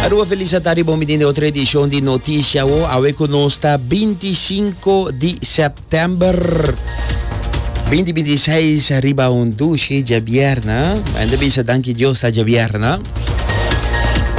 Aruba feliz a tarde, bon mitin de otro edición de Noticia Wo. Awe ku nos ta 25 di september 2026 riba un dushi ja bierna. En de bisa danki Dios ta ja bierna.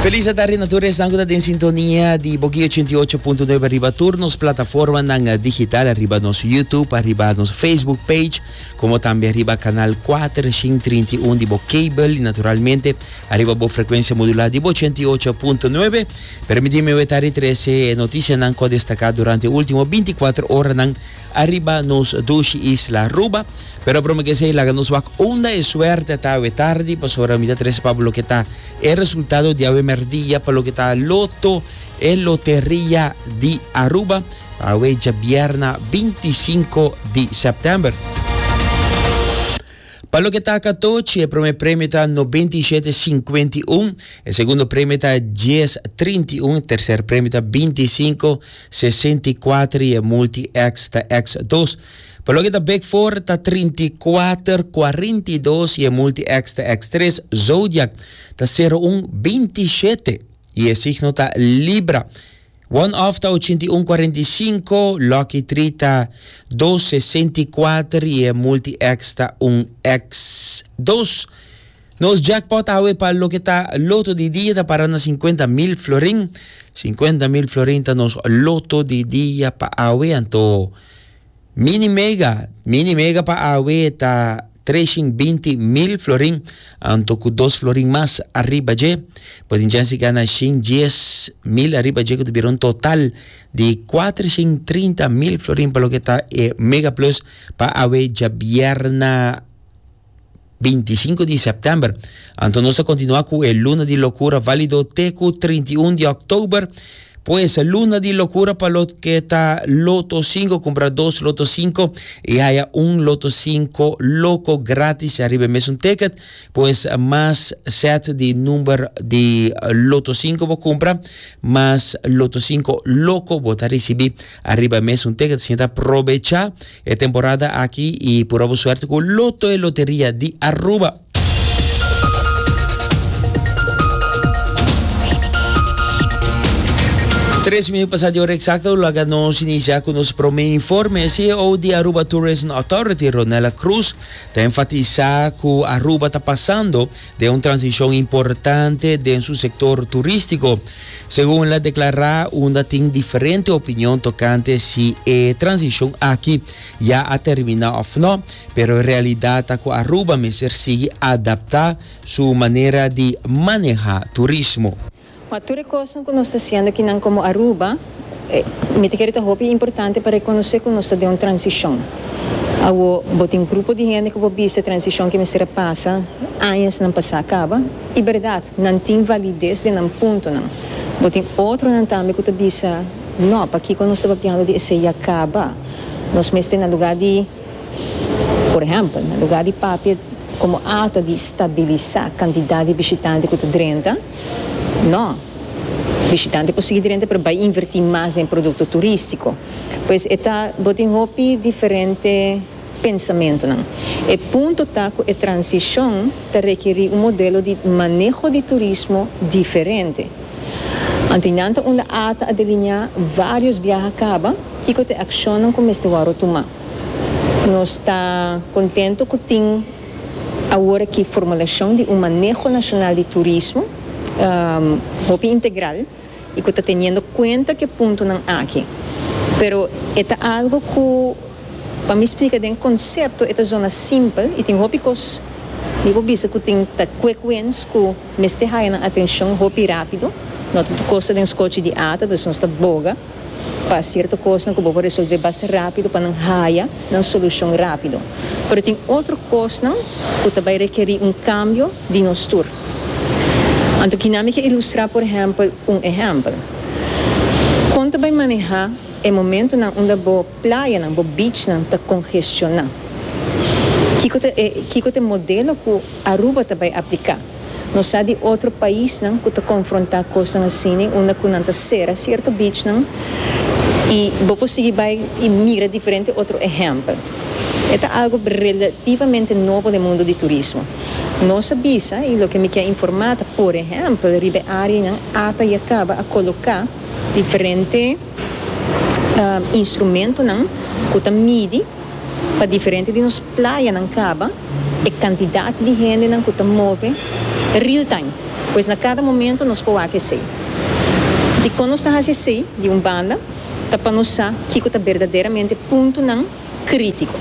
Feliz a tarde na tur esnan ku ta den sintonia di Boki 88.9 riba tur nos plataforma nan digital riba nos YouTube, riba nos Facebook page, komo tambe riba kanal kuater shin trinta i un di bo kabel i naturalmente ariba bo frekuensia modulá di bo ochenta i ocho punto nuebe. Permití mi wetá di trese e notisianan ku a destaká durante e último binti kuater oranan ariba nos dushi isla Aruba. Pero prome ke esei laga nos wak unda e suerte ta awe tardi, pasobra mi ta trese pa bo loke ta e resultado di awe mèrdia pa loke ta loto E loteria di Aruba a wei djabierna binti i sinku di sèptèmber. Pa loke ta katochi, e promé premio ta nobenta i shete sinkuenta i un, e segundo premio ta dies trinta i un, e terser premio ta binti i sinku sesenta i kuater i e multi X ta X dos. Pa loke ta Big Four ta trinta i kuater kuarenta i dos i e multi X ta X tres. Zodiac ta sero un binti i shete. I e signo ta Libra. One off ta ochenta i un cuarenta i cinco, lucky three ta dos sesenta i cuater i e multi X ta un X dos. Nos jackpot awe pa loke ta loto di dia ta para na cincuenta mil florin. Cincuenta mil florin ta nos loto di dia pa awe anto. Mini mega, mini mega pa awe ta treshing binti mil florin, anto ku dos florin mas ariba dje. Bo tin chance gana shin dies mil ariba dje ku ta bira un total di kuatreshing trinta mil florin pa loke ta e Mega Plus pa awe djabièrna. 25 di september. Anto nos ta continua cu e luna di locura valido te cu 31 di october. Pues luna di locura pa lo que ta loto 5 cumpra dos loto 5 y haya un loto 5 loco gratis arriba mesun ticket. Pues mas set di number di loto 5 bo cumpra mas loto 5 loco bo ta ricibi arriba mesun ticket. Asina ta probecha. E temporada aki y pura bo suerte cu Loto e Loteria di Aruba. Tres minuut pasa di ora exacto laga nos inicia cu nos prome informe. E CEO di Aruba Tourism Authority, Ronella Cruz, ta enfatisa cu Aruba ta pasando den un transishon importante den su sektor turistiko, segun la deklará unda tin diferente opinion tokante si e transishon aki ya a terminá òf nò, pero e realidat ta ku Aruba mester sigui adaptá su manera di manehá turismo. Pa tur e kosnan ku nos ta siendo aki nan komo Aruba, mi ta kere ta hopi importante pa rekonosé ku nos ta den un transishon. Awo bo tin grupo di hende ku bo bisa e transishon ke mester a pasa añasnan pa sa kaba. I bèrdat, nan tin valides den nan puntonan. Bo tin otronan tambe ku ta bisa, Nò, pakiko nos ta papiando di esei ya kaba? Nos mester na lugá di. Por ehèmpel, na lugá di papia komo alta di stabilisá kantidat di bishitante ku ta drenta, nò, bishitante por sigui drenta pero bai invertí mas den produkto turístiko. Pues e ta, bo tin hopi diferente pensamentunan. E punto ta ku e transishon ta rekerí un modelo di maneho di turismo diferente. Anto y nan ta unda a ta a delineá varios biaha caba kico ta e accionnan cu mester wòrdo tumá. Nos ta contento cu tin aworakí formulacion di un maneho nacional di turismo hopi integral y cu ta teniendo cuenta cu e puntonan aki. Pero e ta algo cu pa mi splica den concepto e ta zona simpel y tin hopi cos mi por bisa cu tin ta cuecuens cu. Mester haya nan atencion hopi rapido. No ta ta cosa den scochi di ata, dus nos ta boga pa cierto cosnan cu bo por resolve basta rapido pa nan haya nan solucion rapido. Pero tin otro cosnan cu ta bay requeri un cambio di nos tur. Anto kina mi ke ilustra por ehempel un ehempel. Con ta bay maneha e momentonan unda bo. Playanan, bo beachnan ta congestioná. Kiko ta e kiko ta e modelo cu Aruba ta bay aplica? Nos sa di otro paisnan cu ta confrontá cosnan asina unda cu nan ta cera cierto beachnan y bo por sigui bay y mira diferente otro ehempel. E ta algo relativamente nobo den mundo di turismo. Nos a bisa y loke mi kier informá ta por ehempel riba e areanan apa y a caba a coloca diferente. instrumentonan ku ta midi pa diferente di nos playanan kaba e kantidat di hendenan ku ta move real-time. Pues na kada momento nos por wak esei. Dikon nos ta hasi esei? Di un banda ta pa nos sa kiko ta berdaderamente puntonan krítiko.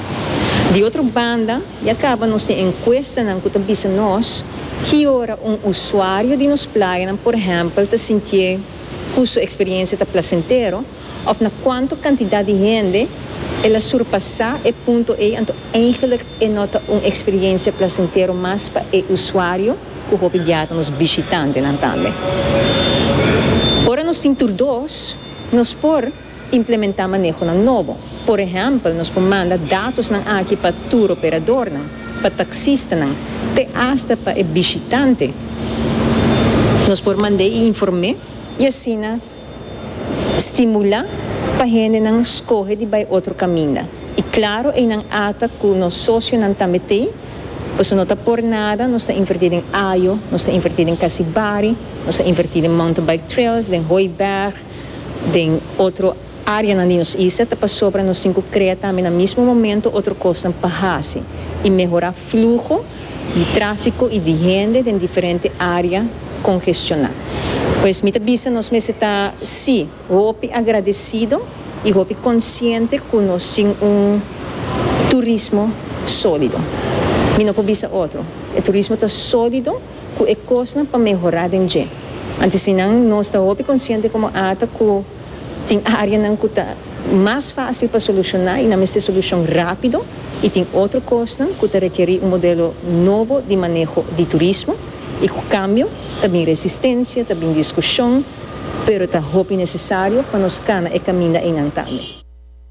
Di otro banda ya kaba nos tin enkuestanan ku ta bisa nos ki ora un usuario di nos playanan, por ehèmpel, ta sintié. cu su experiencia ta placentero of na cuanto cantidad di hende el a surpasa e punto ey anto eigenlijk e no ta un experiencia placentero mas pa e usuario cu hopi biaha ta nos bishitantenan tambe. Ora nos tin tur dos nos por. Implementá manehonan nobo. Por ehèmpel, nos por manda datosnan aki pa tur operadornan, pa taksistanan, te asta pa e bishitante. Nos por mand'é i inform'é i asina stimulá pa hendenan skohe di bai otro kaminda. I klaro einan ata ku nos sosionan tambe t'ei, pasobra no ta por nada, nos ta invertí den Ajo, nos ta invertí den Kasibari, nos a invertí den Mountain Bike Trails, den Hooiberg, den otro áreanan di nos isla ta pasobra nos tin ku krea tambe na mismo momento otro kosnan pa hasi i mehorá fluho di tráfiko i di hende den diferente área kongestioná. Pues mi ta bisa nos mester ta sí hopi agradesido i hopi konsiente ku nos tin un turismo sólido. Mi no por bisa otro, e turismo ta sólido. cu e cosnan pa mehora den dje. Anto si nan no sta hopi consciente como ata cu tin areanan cu ta mas facil pa soluciona y nan mester solucion rapido y tin otro cosnan cu ta requeri un modelo nobo di maneho di turismo y cu cambio ta bin resistencia, ta bin discusion, pero ta hopi necesario pa nos cana e caminda eynan tambe.